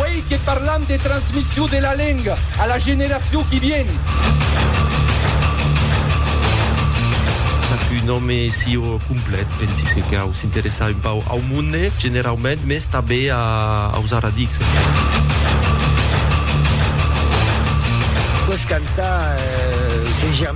Uèi que parlam de transmission de la lenga a la generacion qui vien. Pas qu'un òme sieu complet, pensi se cau s'interessar un pauc au monde generaument, mès tanben aus arradics. Que's canta, se germina.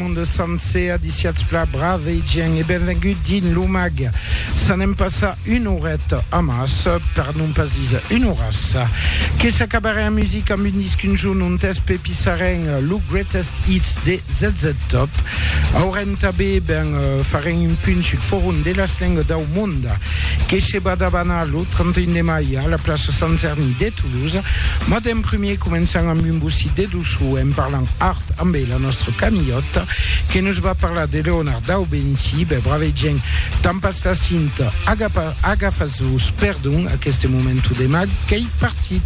Monde sancer a disiatz pla brave gent e benvengut dins lo mag. S'anem passar un oret amàs, per non pas diser un oràs. Que s'acabarè en music amb un disc un jorn ont es pepissarèn lo greatest hits de ZZ Top. Aurèn tabé ben farèn un punt sul forum de las lengues dau monde que se va davanar lo 31 de mai a la plaça Sant Cerni de Toulouse. Mas d'en primier començam amb un bocit de doçor en parlant Tanben la nòstra Camilhòta que nos va parlar de Leonard Daubenci. Ben, bravei gent, tampas la cinta, agafas-vos, perdon, aqueste momento de mag qu'ei partit.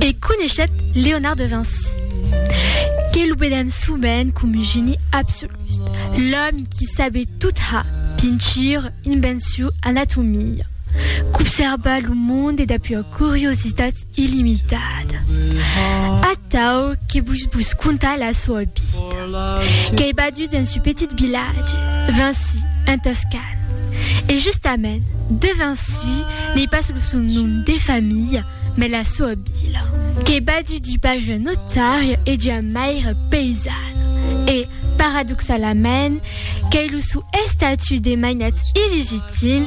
E coneishèt Leonard de Vinci, que lo vedèm sovent com un geni absolut, l'òmi qui sabet tot ha, pintura, invencion, anatomia, qu'obsèrba lo monde dapúa curiositat, illimitada. Atau que vos vos contar la soa vida. Qu'ei badut dens un petit vilatge, Vinci, en Toscana. E justament, de Vinci n'ei pas lo son nom de familha, mas la soa vila. Qu'ei badut d'un paire notari e d'ua maire paisana. E, paradoxalament, qu'ei lo son estatut de mainatz illegitim,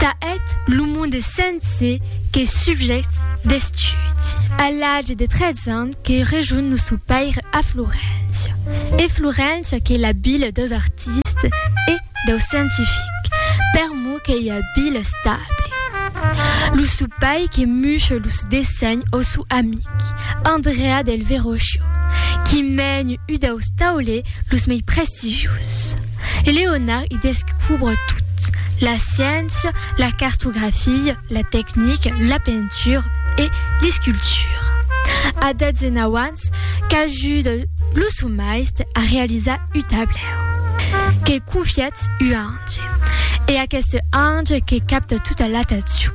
Tà eth lo monde sense que subjècte d'estudi. A l'age de 13 ans que rejonh lo sou paire a Floréncia. E Floréncia qu'ei la vila deus artistes e deus scientifiques, per mou qu'ei ua vila estable. Lo sou pair que muche los dessenhs au sou amic, Andrea del Verrocchio, qui mèn ua deus taulers los mei prestigiuses. e Leonard i descubre tot, la sciéncia, la cartografia, la tecnica, la pentura e l'escultura. A 19 ans qu'ajuda lo sò maiste a realizar u tablèu que confièt u ange e aqueste ange que capta tota l'atencion,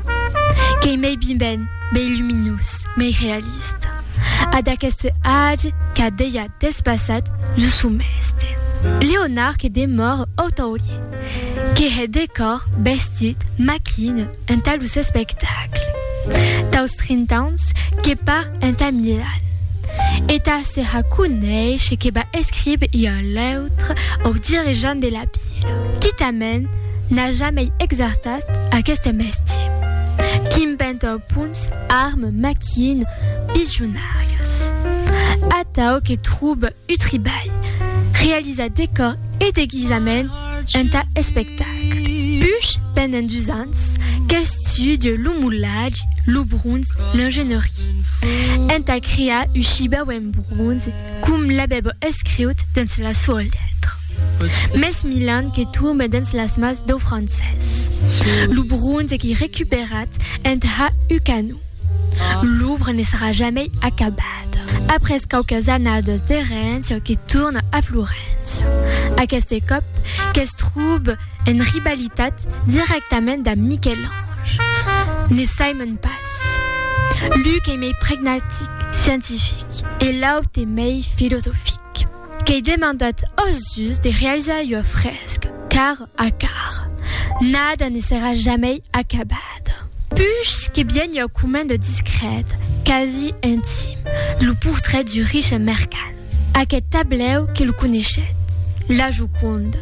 qu'ei mei biben, mei luminós, mei realista. A d'aqueste age qu'a deia. Despassat lo somèste. Leonard que demòre au taulier, que hè decòr, vestit, maquina entà los espectacles. Taus trintans que par entà Milan. E tà se ha conèishe que va escribe ua lèutra au dirigent de la pila. Quitament n'a jamei exerçat aqueste mestier. Qu'impènt au punts, arme, maquina, pijonar. Vargas, atau que trobe un tribalh realizat decòr e deguisament entà espectacle. Puish pendent dus ans qu'estudie lo molatge, lo bronze, l'ingénierie, entà crear un chibau en bronze com l'avèbo escriut dens la soa letra. Mès Milan que tombe dens las mans dau francés. Lo bronze qu'ei recuperat entà un canon. L'òbra ne serà jamei acabada. Après quauquas annadas de Rennes que torna a Florens. Aqueste còp que's trobe en rivalitat dirèctament damb Miquel-Ange. Ne saimon pas. L'un qu'ei mei pragmatic, scientific, e l'aute mei filosofic. Qu'ei demandat ath dus de realizar ua fresca, cara a cara. Nada ne serà jamei acabada. Ada. Puish que bien ua comenda discrèta, quasi intime, lo portrait du riche mercan, aqueth tablèu que lo coneishèt, La Joconda,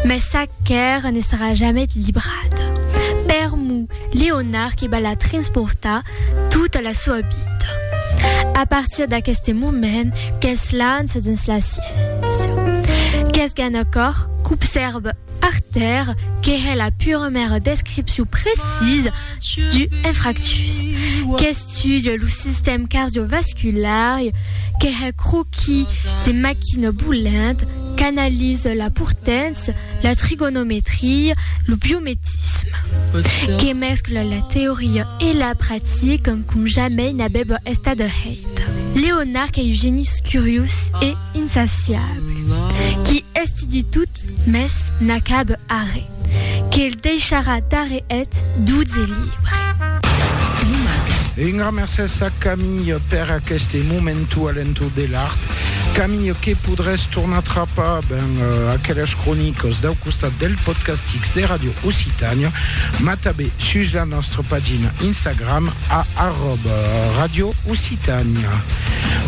mès sa quèra ne serà jamet librada per Mo Leonard que va la transportar tota la soa vida. A partir d'aqueste moment que's lança dens la sciéncia. Que's gana còr, qu'obsèrva Artèr, que hè la puremèra descripcion precisa du infarctus, qu'estudia lo sistèm cardiovascular, que hè croqui de maquina bolent, qu'analisa la portància, la trigonometria, lo biometisme. Que mescla la teoria e la practica com jamei n'abèba estat hèit. Leonard qu'ei un genius curiós e. insaciable, qui esti du tout mes n'acabe arre, que'l deisharà d'arre eth doutz e libre. E un gran mercés a Camille per aqueste momentu alento de l'art. Camille, que podrés tornar trapar ben aqueles cronicos dau costat del Podcastix de Radio Occitània, mas tanben sus la nòstra pagina Instagram a arròba Radio Occitània. Tania.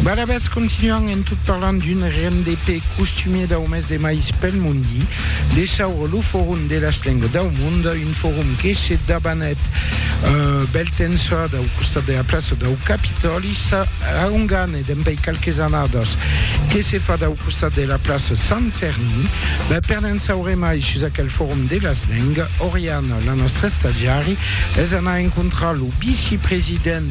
Barabas continuant en tot parlant d'un RNDP costumier dau mes de mais pel mondi, de chaure lo forum de las lengues dau mond, un forum que se dabanèt bèl temps çò dau costat de la plaça dau Capitòli, ça a un gane dempèi qualques annadas que se fa dau costat de la plaça Sant Cerni. Ben, per ne'n saure mai sus aquel forum de las lengues, Oriana, la nòstra estagiari, es anar encontrar lo vicepresident,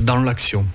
dans l'accion.